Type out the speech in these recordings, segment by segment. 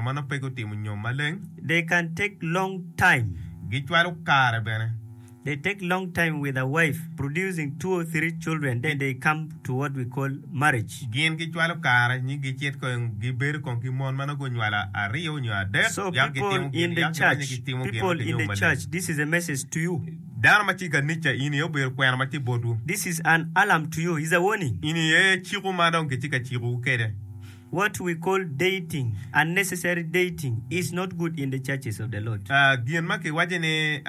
Ma nongo pe gutimo nyom maleng. They can take long time. Gicwalo kare bene. They take long time with a wife, producing two or three children, then they come to what we call marriage. Gin gicwalo kare nyi gicit kong gibedo kong ki mon ma nongo gunywalo aryo nyo adek, So yako people gitimo in gin, the yako giwinyo church, gitimo gin people wek in ginyom the maleng. church, this is a message to you. Dano ma tye i kanica, in aye obedo kwena ma tye i botwu. This is an alarm to you, is a warning. In aye ciko ma dong kitye ka cikowu kwede. What we call dating, unnecessary dating is not good in the churches of the Lord. Gin ma kiwaco ni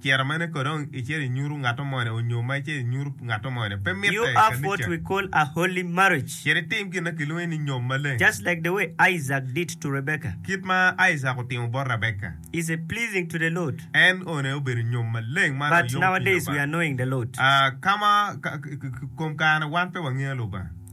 cito mene kodi icito inyutu ngato moni onyo ma icito inyutu ngato moni pe mitte i kanica. You have what we call a holy marriage. Cit itim gin ma kilwongo ni nyom maleng. Just like the way Isaac did to Rebekah. Kit ma Isaac otimo bot Rebekah. Is a pleasing to the Lord. En one aye obedo nyom maleng ma yom ki Lubanga. But nowadays we are knowing the Lord. Ka ma i kom kare-ni wan pe wangeyo Lubanga.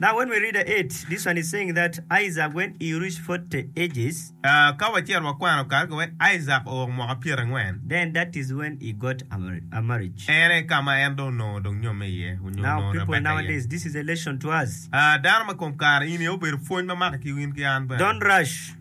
Now when we read it, this one is saying that Isaac when he reached forty ages, Ka wacito wakwano kare ka wek Isaac owoko mwaka pyerangwen, then that is when he got a mar- a marriage. en aye ka ma en dong onongo dong nyomme iye, onyo Now onongo people Rebecca iye. nowadays, this is a lesson to us. Ah, dano ma kom kare, in aye obedo pwony ma maka ki in ki an bene. Don't rush.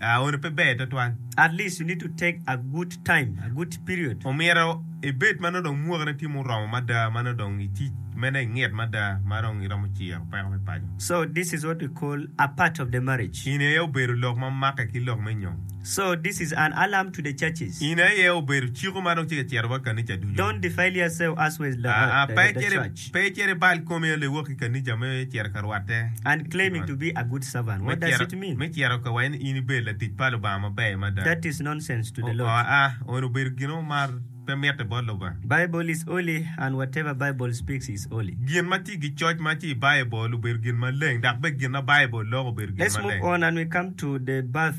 Ah, eno pe ber twatwal. At least you need to take a good time, a good period. Omyero ibed ma nongo dong mwakine tye ma oromo mada ma nongo dong i tic mene i ngit mada ma dong iromo ciro peko me paco. So this is what we call a part of the marriage. In aye obedo lok ma make ki lok me nyom. So this is an alarm to the churches. In aye obedo ciko ma dong tye ka ciro wa kanica ducu. Don't defile yourself as well as the church. Pe icit ibal komi a lewok i kanija me cito ka rwatte. Unclaiming to be a good servant, what does it mean? Me cito ka wa in ibed latic pa Lubanga maber mada. That is nonsense to the Lord. Aa, eno obedo gin mo ma pe mitte bot Lubanga. Bible is holy and whatever Bible speaks is holy. Gin ma tye gicoc ma tye i Bible obedo gin maleng dok bene gin ma Bible loko obedo gin Let's move maleng. on and we come to the birth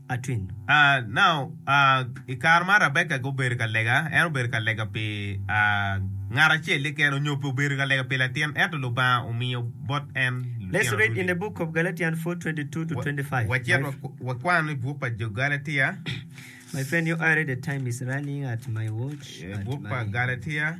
Atwin. Now, i kare ma Rabeka gubedo ka lega, en obedo ka lega pi ngat acel-li kene onyo pe obedo ka lega pi latin, ento Lubanga omiyo bot en lutino Let's read in the ducu. book of Galatians four twenty two to twenty five. Wacit wakwan i buk pa jo Galatia, My friend, your eye read the time is running at my watch, at buk pa my. Galatia.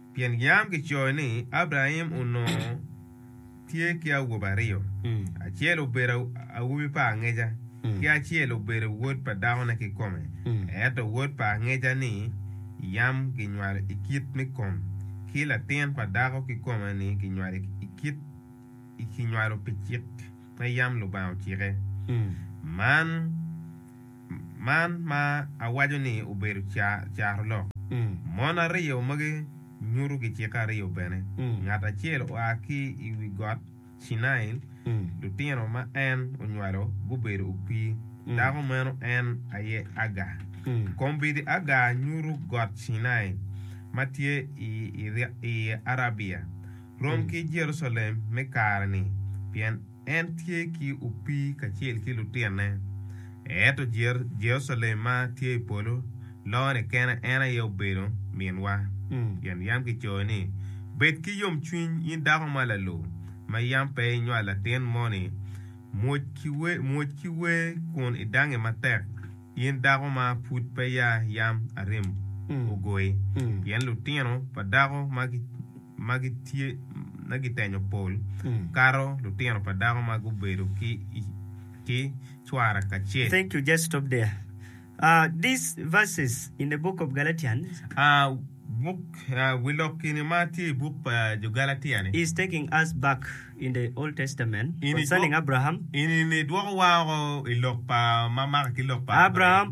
Pien yam kicoyo ni Abraim onongo tye ki awobe aryo, acel obedo awobi pa angeca, ki acel obedo wod pa dakone kikome, ento wod pa angeca-ni yam kinywalo i kit me kom, ki latin pa dako kikome-ni kinywalo i kit kinywalo pi cik ma yam Lubanga ocike. Man. man ma awaco ni obedo caro lok. Mon aryo magi nyuto gicikke aryo bene, ngat acel oa ki i wi Got Cinai, lutino ma en onywalo gubedo opii, dako meno en aye Agar. Kombeddi Agar nyuto Got Cinai ma tye i Arabia, rom ki Jerucalem me kare-ni, pien En tye ki opii kacel ki lutinne. Ento Jerucalem ma tye i polo loo ni kene en aye obedo minwa. Pien yam kicoyo ni, 'Bed ki yomcwiny, in dako ma lalo, ma yam pe inywalo latin moni. Mwoc ki wer kun idangnge matek, in dako ma pud peya yam arim ogoyi, pien lutino pa dako ma ma gitye ma gitenyo pol kato lutino pa dako ma gubedo ki cwara kacel. Wi lok eni ma tye i buk pa Jugalatia-ni eni dwokowa woko i lok pa ma maka ki lok pa Abraim.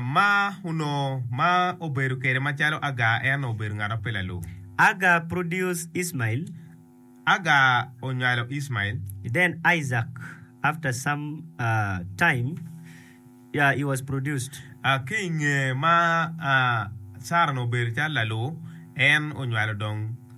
Ma onongo ma obedo kede macalo Agar en obedo ngat ma pe lalub. Agar produced Ismail. Agar onywalo Ismail. Then Isaac after some time he was produced. Ki inge ma Sara onongo obedo calo lalu, en onywalo dong.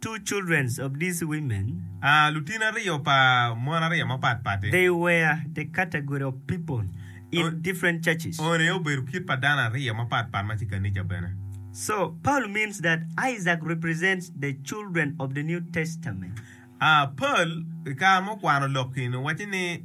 Two children of these women. Lutino aryo pa mon aryo mapat pati. They were the category of people in different churches. One aye obedo kit pa dano aryo mapat pat ma tye i kanica bene. So, Paul means that Isaac represents the children of the New Testament. Paul i kare ma okwano lok-ki ni waci ni.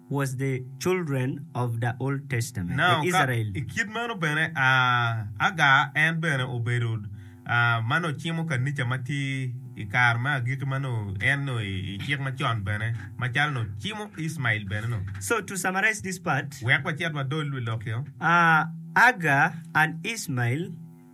was the children of the Old Testament, the Now, ka Israel. i kit meno bene, ah, Agar en bene obedo, ah, ma nongo cimo kanica ma tye i kare me agikki ma nongo en nongo i, i Cik Macon bene, macalo nongo cimo Icmael bene nongo. So, to summarize this part, Wek wacit wadol wi lokio. ah, Agar and Icmael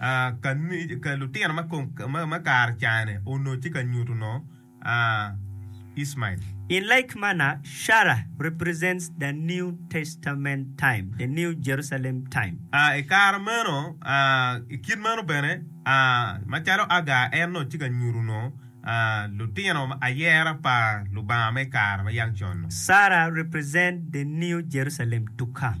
ka lutino ma kare cane onongo tye ka nyuto onongo Ismael. In like manner Sarah represents the New Testament time, the New Jerusalem time. I kare meno, i kit meno bene, macalo Agar en onongo tye ka nyuto onongo lutino ayera pa Lubanga me kare ma yang con-nu. Sarah represents the New Jerusalem to come.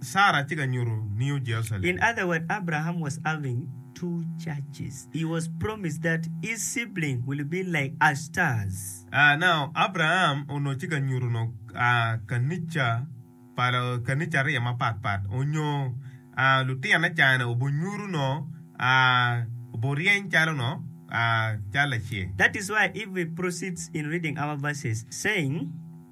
Sarah tye ka nyuto New Jerusalem. In other word Abraham was having two churches he was promised that his sibling will be like a stars. Ah now Abraham onongo tye ka nyuto nongo ah kanica pa kanica ariya mapat pat onyo ah lutine cani obo nyuto nongo ah obo ryeny calo nongo ah calo laceng. That is why if we proceeds in reading our verses saying.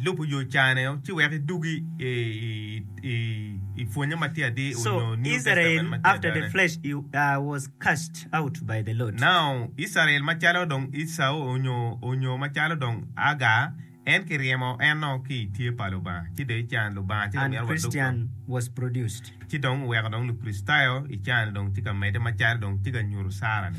Lubo yo cane ci wek idug i pwonye ma tye atir onyo New Testament ma tye adane. Now, Israel after the flesh i was cast out by the Lord. Now, Israel macalo dong Ecau onyo onyo macalo dong Agar, en kiryemo eno ki i tye pa Lubanga ci dong ican Lubanga ci ka And mito wadug Christian dong. was produced. Ci dong weko dong Lukricitayo ican dong ci ka mede macalo dong tye ka nyuto Sara ni.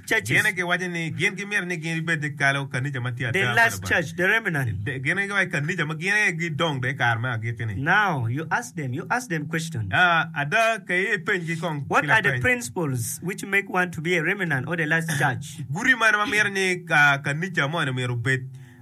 Cene giwaco ni gin gimito ni gin bibed ni kalo kanica ma tye ada pa Lubanga. Gin giwaco ni kanica ma gin aye gidong bene i kare me agikki-ni. Ada, ka iye ipenygi kong ki lapeny. Guti mane ma mito ni kanica moni myero obed?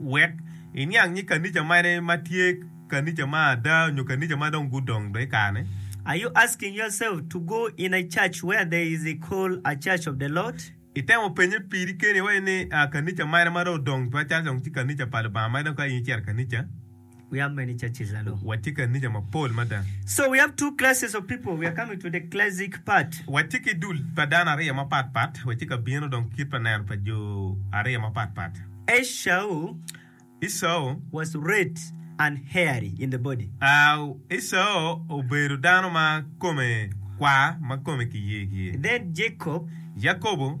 Wek iniang nyig kanica mane ma tye kanica ma ada nyo kanica ma dong gudong do i kare-ni? Are you asking yourself to go in a church where there is a call a church of the Lord? Itemo penye piri keni iwaco ni, Kanica mane ma dong odong twaccal dong ci kanica pa Lubanga ma dong ka in icito kanica? We have many churches hello. Watye ki anica mapol mada. So we have two classes of people, we are coming to the classic part. Watye ki dul pa dano aryo mapat pat, watye ka bino dong kit pa neno pa jo aryo mapat pat. Esau Esau was red and hairy in the body. Au, Esau obedo dano ma kome kwar, ma kome kiyer kiyer. Then Jacob. Yakobo.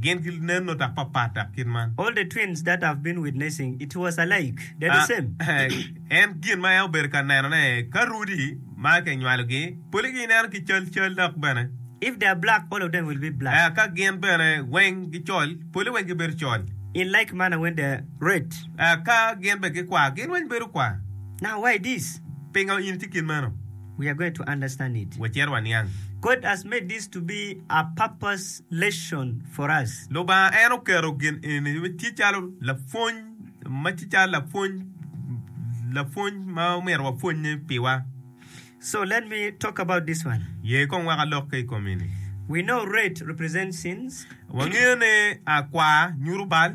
Gin ginen nongo dok papat dok kit man. All the twins that have been witnessing it was alike, they're the same. En gin ma en obedo ka neno ne ka Rudy ma ki nywalo gi poli gi ineno ki cal cal dok bene. If they are black all of them will be black. Ka gin bene weng gi col poli weng gi bedo col. In like manner when they are red. Ka gin bene gi kwar gin weng bedo kwar. Now why this? Pinga in tye kit meno? We are going to understand it. Wacit waniang. God has made this to be a purpose lesson for us. Lubanga en oketo gin eni me tye calo lapwony ma tye calo lapwony lapwony ma omyero wapwonye piwa. So let me talk about this one. Ye kong wek alok ki i kom eni. We know red represents sins. Wangeyo ni akwar nyuto bal.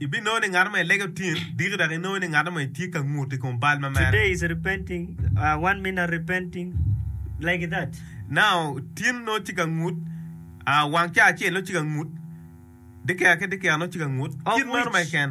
Ibinongo ni ngat ma ilege otin diki dok inongo ni ngat ma itye ka ngut i kom bal ma mere. Naka otin nongo tye ka ngut, wang ca acel nongo tye ka ngut, dyekeka ki dyekeka nongo tye ka ngut. Kit meno keken.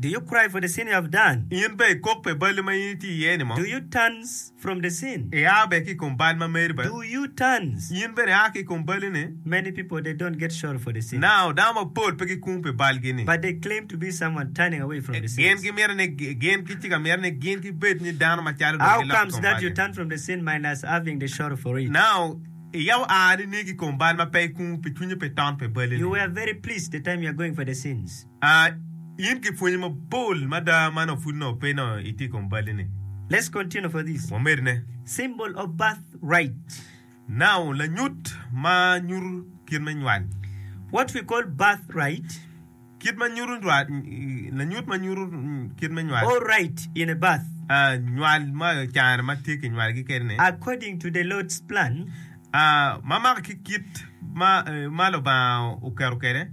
Do you cry for the sin you have done? In bene ikok pi balli ma in itye iye-ni mo? Do you turn from the sin? Ia bene ki i kom bal ma meri bene. Do you turn? In bene ia ki i kom balli-ni. Many people they don't get sorry for the sins. Now, dano mapol pe gikung pi balgi-ni. But they claim to be someone turning away from the sins. Gin gimito ni gin ki ci ka mito ni gin gibed ni dano macalo dong giloko i kom balgi. How comes that you turn from the sin minus having the sorry for it? Now, ia oa nining ki i kom bal ma pe ikung pi cwinyi pi ton pi balli-ni? You were very pleased the time you are going for the sins. A In ki pwony mapol mada ma nongo pud nongo pe nongo itye i kom balli ni. Let's continue for this. Wamed ne. Symbol of birth right. Noun, lanyut ma nyuto kit me nywal. What we call birth right. Kit ma nyuto nywal, lanyut ma nyuto kit me nywal. Or right in a birth. A Nywal ma ocano ma tye kinywalgi kede ni. According to the Lord's plan. A Ma mako ki kit ma Lubanga oketo kede.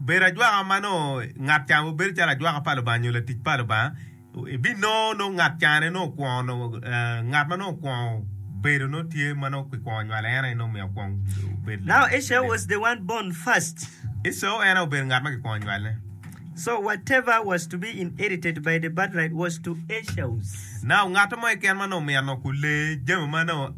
Bedo ajwaka ma nongo ngat ca onongo bedo calo ajwaka pa Lubanga nyo latic pa Lubanga, ibinongo nongo ngat ca ni nongo kwongo nongo ngat ma nongo kwongo bedo nongo tye ma nongo kikwongo nywale en aye nongo omiyo kwongo obedo Now latic Esau was the one born first. Esau en aye obedo ngat ma kikwongo nywale. So whatever was to be inherited by the birthright was to Esau's. Now ngat mo keken ma nongo omyero nongo kulee jami ma nongo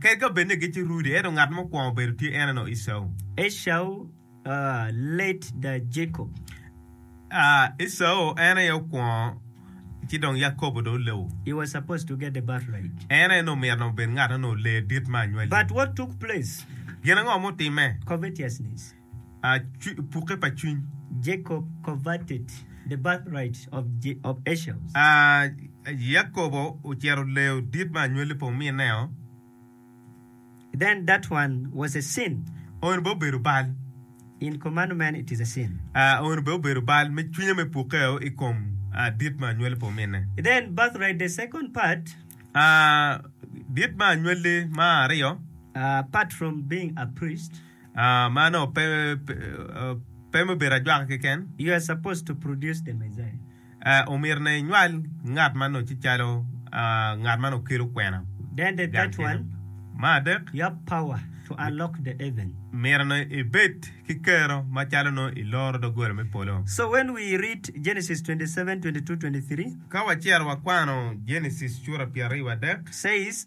Kadi ka bed ni gitye rudi, ento ngat ma okwongo bedo tye en onongo Ecau. Ecau en aye okwongo, ci dong Yakobo dong olubo. En aye onongo myero obed ngat ma onongo lee dit me anywalli. Gin ango ma otimme? a pukke pa cwiny. Jacob coveted the birthright of Esau. A Yakobo ocito leyo dit ma anywalli pa omineo. Then that one was a sin. Ono bene obedo bal. In commandment it is a sin. A Ono bene obedo bal me cwinye me pukkeo i kom dit ma anywalli pa ominne. Then birthright the second part. A Dit ma anywalli ma aryo. Apart from being a priest. Mano pe me bedo ajwaka keken. You are supposed to produce the Messiah. Omyero ne inywal ngat ma noce calo ngat ma nongo kelo kwena. Then the third one. Me adek. You have power to unlock the heaven. Myero ne ibed ki kero ma calo nongo iloro doggola me polo. So when we read Genesis twenty seven twenty two twenty three. Ka wacito wakwano Genesis cura pyeraryo wadek. Says.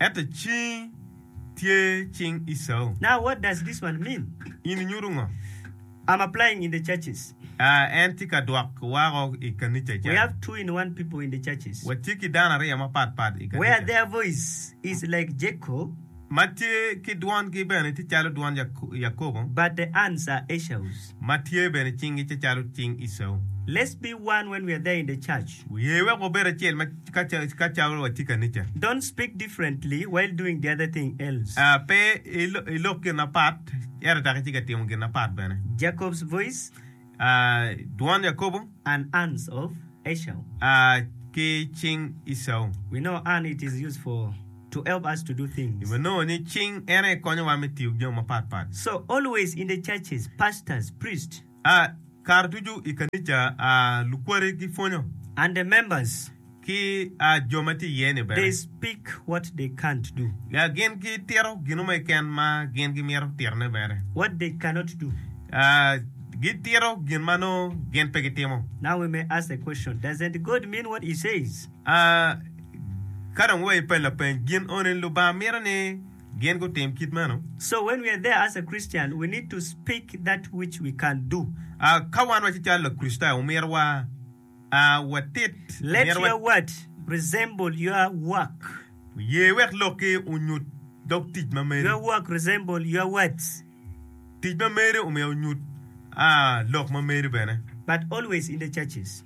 Ento cingi tye cing Ecau. Now what does this one mean? In inyuto ngo? I'm applying in the churches. En tye ka dwok wako i kanica ca. We have two in one people in the churches. Watye ki dano aryo mapat pat i kanica. Where their voice is like Jacob. Ma tye ki dwongi bene tye calo dwon Yakobo. But the ands are Ecau's. ma tye bene cinggi tye calo cing Ecau. Let's be one when we are there in the church. Wuye wek wubed acel ma ka calo watye kanica. Don't speak differently while doing the other thing else. Pe ilok gin na pat ento dok itye ka timo gin na pat bene. Jacob's voice. Dwon Yakobo. And hands of Ecau. Ki cing Ecau. We know hand it is used for. to help us to do things. Ibi nongo ni cing ene konyowa me tiyo ki jami mapat pat. So always in the churches, pastors, priests. A. Kare ducu i kanica, a lukware ki pwonyo. And the members. Ki a jo ma tye iye ni bene. They speak what they can't do. A gin gi tito ginu mo keken ma gin gi mito tito ne bene. What they cannot do. A gi tito gin ma nongo gin pe gi timo. Now we may ask the question, doesn't God mean what he says? A Ka dong wa ipe lapeny, gin oni Lubanga mito ni gin gutim kit meno? So when we are there as a Christian, we need to speak that which we can do. A Ka wan waci calo Lakricitayo, omyero wa a watit. Let Omyero wa your word resemble your work. ye wek lokki onyut dog tic ma meri. Your work resemble your words. Tic ma meri omyero onyut a lok ma meri bene. But always in the churches.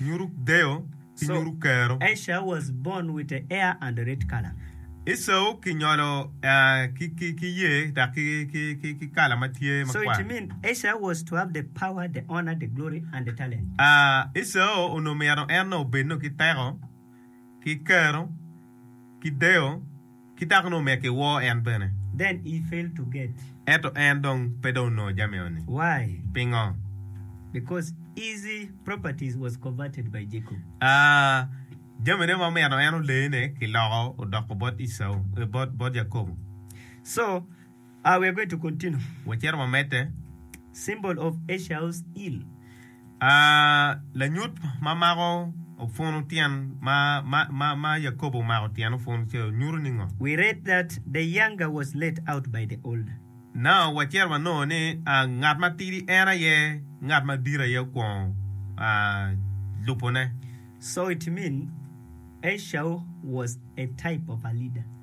Nyuru deyo ki nyuru kero. Asia was born with a hair and red color. Esau ki nyolo ki yer dok ki kala ma tye makwar. So it mean Esau was to have the power, the honor, the glory and the talent. Esau onongo myero en obed nongo ki teko, ki kero, ki deyo, ki dako-nu omek i wor en bene. Then he failed to get. Ento en dong pe dong onongo jami eno-ni. Why? Pingo? Because his properties was coveted by Jacob. A, jamine ma omyero en olene kiloko odoko bot Ecau, bot Jacobo. So. A We are going to continue. Wacito wamedde. Symbol of Esau's heel. A Lanyut ma mako opwunu tyen ma ma ma Yakobo omako tyen opwunu ce nyuto ningo? We read that the younger was let out by the older. Now wacito wanongo ni a ngat matidi en aye ngat madit aye okwongo a lubone. So it mean Esau was a type of a leader.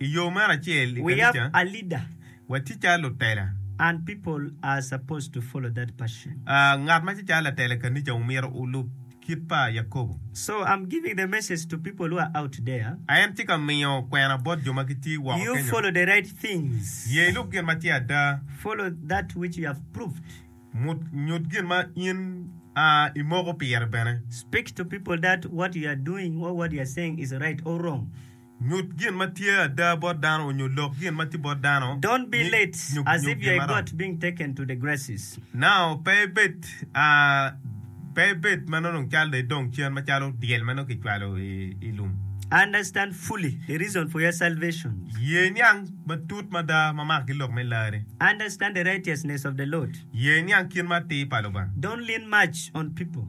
I yo meno acel i kanicawa, watye calo lutela. Ngat ma tye calo latela i kanica omyero olub kit pa Yakobo. A En tye ka miyo kwena bot jo ma gitye woko kenyu. Ye ilub gin ma tye ada. Nyut gin ma in imoko pire bene. Nyut gin ma tye ada bot dano onyo lok gin ma tye bot dano. Don't be late as if you're a goat being taken to the graces. Now pe ibed Pe ibed ma nongo dong calo dong idong cen macalo dyel ma nongo kicwalo i lum. Understand fully the reason for your salvation. Ye niang matut mada ma maka ki lok me larri. Understand the righteousness of the Lord. Ye niang kit ma atir pa Lubanga. Don't lean much on people.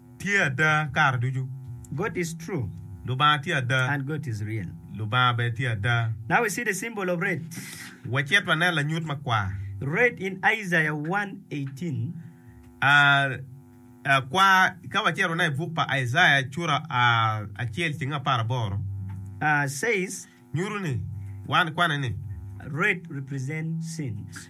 tye ada kare ducu. God is true. Lubanga tye ada. And God is real. Lubanga bene tye ada. Now we see the symbol of red. Wacit wanen lanyut makwar. Red in Isaiah one eighteen. A kwar ka wacito waneno i buk pa Icaiah cura acel ceng apar aboro. Says. Nyuto ni, wan kwane ni. Red represent sins.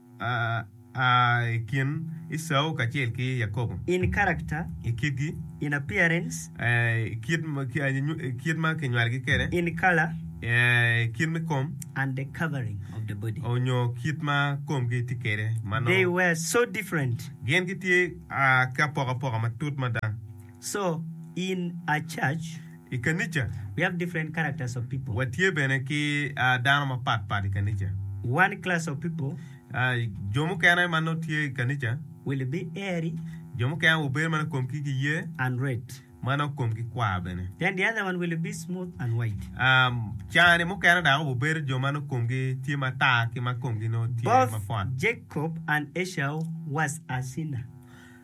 a i kin Ecau kacel ki Yakobo. In character. I kitgi. In appearance. I kit ma kinywalogi kwede. In color. I kit me kom. And the covering of the body. Onyo kit ma komgi tye kwede ma nongo. They were so different. Gin gitye ki apokapoka matut mada. So, in a church. i kanica. We have different characters of people. Watye bene ki dano mapat pat i kanica. One class of people. Jo mukene ma nongo tye i kanica. Will be airy. Jo mukene wubedo ma nongo komgi giye. And red. Ma nongo komgi kwar bene. Then the other one will be smooth and white. Cani mukene dok wubedo jo ma nongo komgi tye matar ki ma komgi nongo tye mapwot. Both Jacob and Esau was a sinner.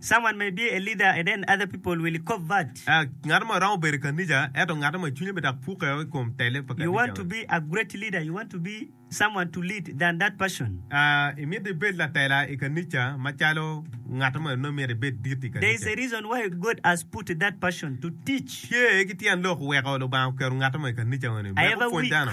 Someone may be a leader and then other people will convert. Ngat mo romo bedo i kanica ento ngat mo cwinye bedak puke i kom tele pa kanica. You want to be a great leader, you want to be someone to lead than that person. Imito ibed latela i kanica macalo ngat mo nongo imito ibed dit i kanica. There is a reason why God has put that person to teach. Tye ki tyen lok weko Lubanga oketo ngat mo i kanica eni wek opwony dano.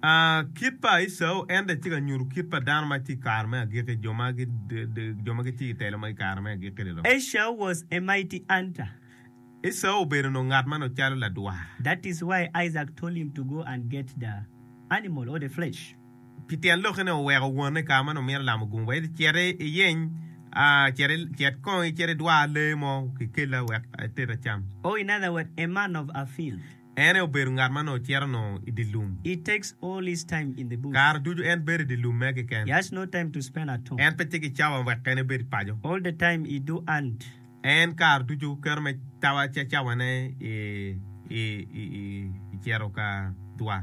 A Kit pa Ecau, en bene tye ka nyuto kit pa dano ma tye i kare me agikki, jo ma gitye i telo ma i kare me agikki-ni dok. Ecau was a mighty hunter. Ecau obedo nongo ngat ma nongo calo ladwar. That is why Isaac told him to go and get the animal or the flesh. Pi tyen lokke-ni oweko wonne i kare ma nongo mito lamo gungu, wek ecit iyeny, cet kong icit idwar lee mo kikelli wek ated acam. Or in other word, a man of a field. En aye obedo ngat ma nongo cito nongo i dye lum. Kare ducu en bedo i dye lumme keken. En pe tye ki cawa wek kene ebed i paco. En kare ducu keto me cawa ca cawane i cito ka dwa.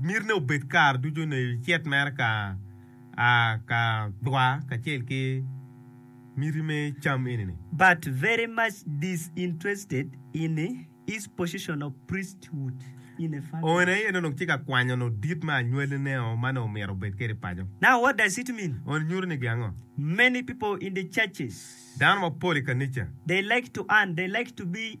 Myero ni obed kare ducu ni icit mere ka a ka dwa kacel ki miti me cam eni ni. But very much disinterested in his position of priesthood in a family. Owene aye nongo tye ka kwanyo nongo dit me anywallineo ma nongo omyero obed kwede i paco. Now what does it mean? Owene nyuto ni gi ango? Many people in the churches. Dano mapol i kanica. They like to earn, they like to be.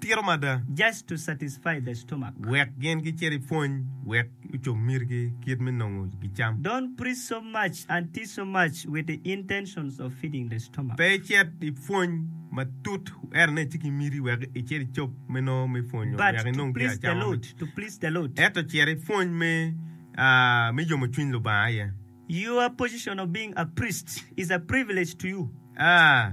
tito mada. Just to satisfy the stomach. Wek gin gicit i pwony wek gucob mitigi kit me nongo gicam. Don't preach so much and teach so much with the intentions of feeding the stomach. Pe icit i pwony matut ento nen ci ki miti wek icit icob me nongo me pwonyo But wek to inong gin please the acama Lord, miti. to please the Lord. Ento cit i pwony me, ah, me yomo cwiny Lubanga aye. Your position of being a priest is a privilege to you. Ah,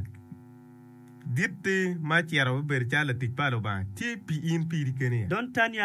Gitti ma acito abibedo calo latic pa Lubanga tye pi in piri keni aye.